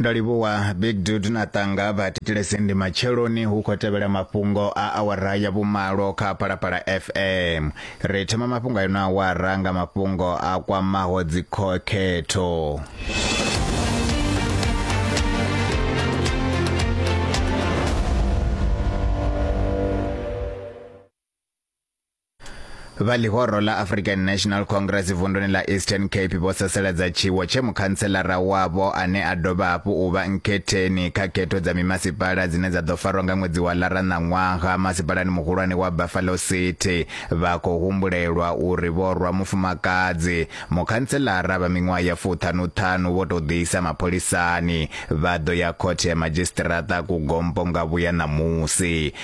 ndo livhuwa big dude na tanga vha thetshelese ndi matsheloni hu khou tevhela mafhungo a awara ya vhumalo kha phalaphala fm ri thoma mafhungo a ino awara nga mafhungo a kwamaho dzikhokhetho vha ḽihoro ḽa african national congress vunduni ḽa eastern cape vho sasaladza tshiwo tshe mukhantselara wavho ane a dovha hafhu u vha nkhetheni kha khetho dza mimasipala dzine dza ḓo farwa nga ṅwedzi wa lara na ṅwaha masipalani muhulwane wa buffalo city vha khou humbulelwa uri vho rwa mufumakadzi mukhantselara vha miṅwaha ya fuṱhanuṱhanu vho tou ḓiisa mapholisani vha ḓo ya khothe ya madzhisiṱiraṱa kugompo nga vhuya ṋamusi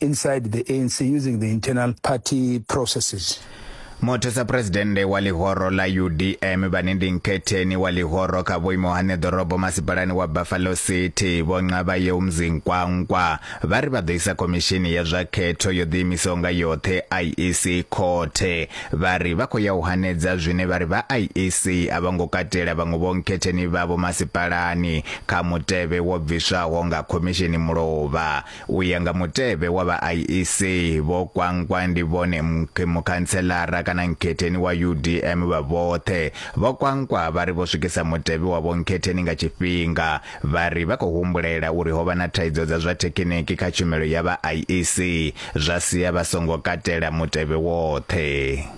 inside the ANC using the internal party processes. muthusa phuresidennde wa ḽihoro ḽa udm vhane ndi nkhetheni wa ḽihoro kha vhuimo ha neḓorobo masipalani wa buffalo city vho nqavha yeu mzinkwankwa vha ri vha ḓo isa khomishini ya zwa khetho yo ḓiimisaho nga yoṱhe iec khothe vha ri vha khou ya u hanedza zwine vha ri vha iec a vha ngo katela vhaṅwe vho nkhetheni vhavho masipalani kha mutevhe wo bviswaho nga khomishini mulovha U ya nga mutevhe wa vha IEC, vho Kwankwa ndi vhone mukhantselara kana nkhetheni wa UDM vha vhoṱhe. Vho Kwankwa vha ri vho swikisa mutevhe wavho nkhetheni nga tshifhinga. Vha ri vha khou humbulela uri ho vha na thaidzo dza zwa thekhiniki kha tshumelo ya vha IEC, zwa sia vha songo katela mutevhe woṱhe.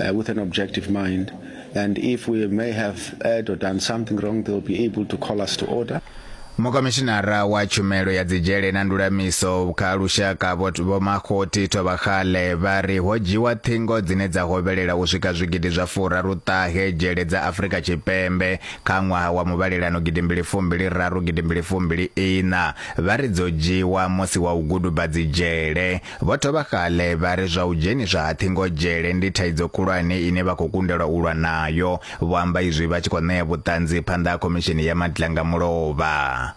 Uh, with an objective mind. And if we may have erred or done something wrong, they'll be able to call us to order. mukomishinara wa tshumelo ya dzidzhele na ndulamiso kha lushaka vhomakhoti thovhakhale vha ri ho dzhiwa ṱhingo dzine dza hovhelela u swika zwigidi zwa furaruṱahe dzhele dza afurika tshipembe kha ṅwaha wa muvhalelano gidimbili fumbili raru gidimbili fumbili ina vha ri dzo dzhiwa musi wa u guduba dzidzhele Vho thoma kale vha ri zwa u dzheniswa ha ṱhingodzhele ndi thaidzo khulwane ine vha khou kundelwa u lwa nayo. Vho amba izwi vha tshi khou ṋea vhuṱanzi phanḓa ha Khomishini ya Madlanga Mulovha.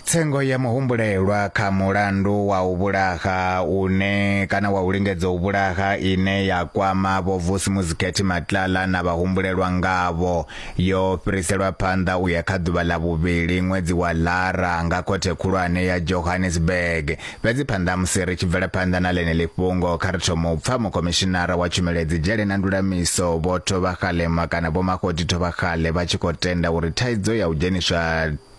Tsengo ya muhumbulelwa kha mulandu wa u vhulaha une kana wa u lingedza u vhulaha ine ya kwama Vho Vusi Muzikhethi Matlala na vhahumbulelwa ngavho. Yo fhiriselwa phanḓa u ya kha ḓuvha ḽa vhuvhili ṅwedzi wa Lara nga khothe khulwane ya Johannesburg. Fhedzi phanḓa musi ri tshi bvela phanḓa na ḽeneḽi fhungo, kha ri thome u pfa mukhomishinara wa tshumelo dzi dzhele na ndulamiso Vho Thobakgalema kana Vho Makgoti Thobakgale vha tshi khou tenda uri thaidzo ya u dzheniswa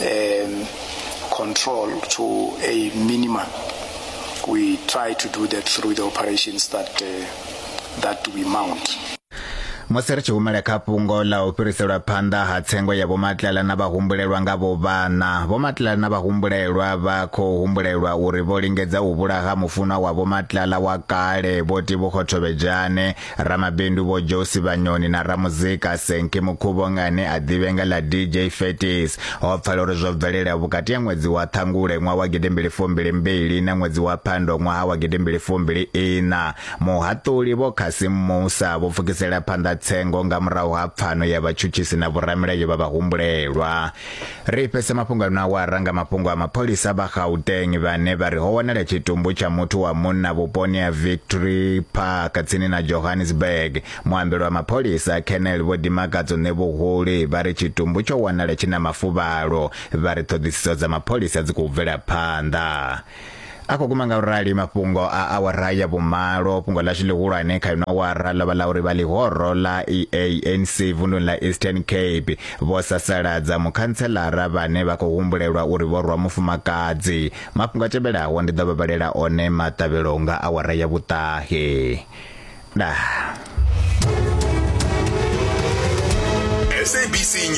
um, control to a minimum. We try to do that through the operations that, uh, that we mount. musi ri tshi humela kha fhungo ḽa u fhiriselwa phanḓa ha tsengo ya vhomatlala na vhahumbulelwa nga vhovhana vhomatlala na vhahumbulelwa vha khou humbulelwa uri vho lingedza u vhulaha mufunwa wa vhomatlala wa kale vho tivhukhothobedzhane Ramabindu Vho Josi Vhanyoni na ramuzika Senki Mukhuvhonga ane a ḓivhe nga ḽa DJ Fetis ho pfala uri zwo bvelela vhukati ha ṅwedzi wa Ṱhangule ṅwaha wa gidimbili fumbili mbili na ṅwedzi wa Phando ṅwaha wa gidimbili fumbili iṋa. Muhaṱuli Vho Cassim Musa vho pfukisela phanḓa tsengo nga murahu ha pfano ya vhatshutshisi na vhoramilayo vha vhahumbulelwa. Ri fhese mafhungo ano a wara nga mafhungo a mapholisa vha Gauteng vhane vha ri ho wanala tshitumbu tsha muthu wa munna vhuponi ha Victory Park tsini na Johannesburg. Muambeli wa mapholisa Colonel Vho Dimakadzo Ṋevhuhuli vha ri tshitumbu tsho wanala tshi na mafuvhalo vha ri ṱhoḓisiso dza mapholisa dzi khou bvela phanḓa. a khou guma nga u rali mafhungo a awara ya vhumalo fhungo ḽashu ḽihulwane kha ino awara ḽo vha ḽa uri vha ḽihoro ḽa eanc vunduni ḽa eastern cape vho sasaladza mukhantshelara vhane vha khou humbulelwa uri vho rwa mufumakadzi mafhungo a tevhelaho ndi ḓo vha vhalela one maṱavhelo nga awara ya vhuṱahe dah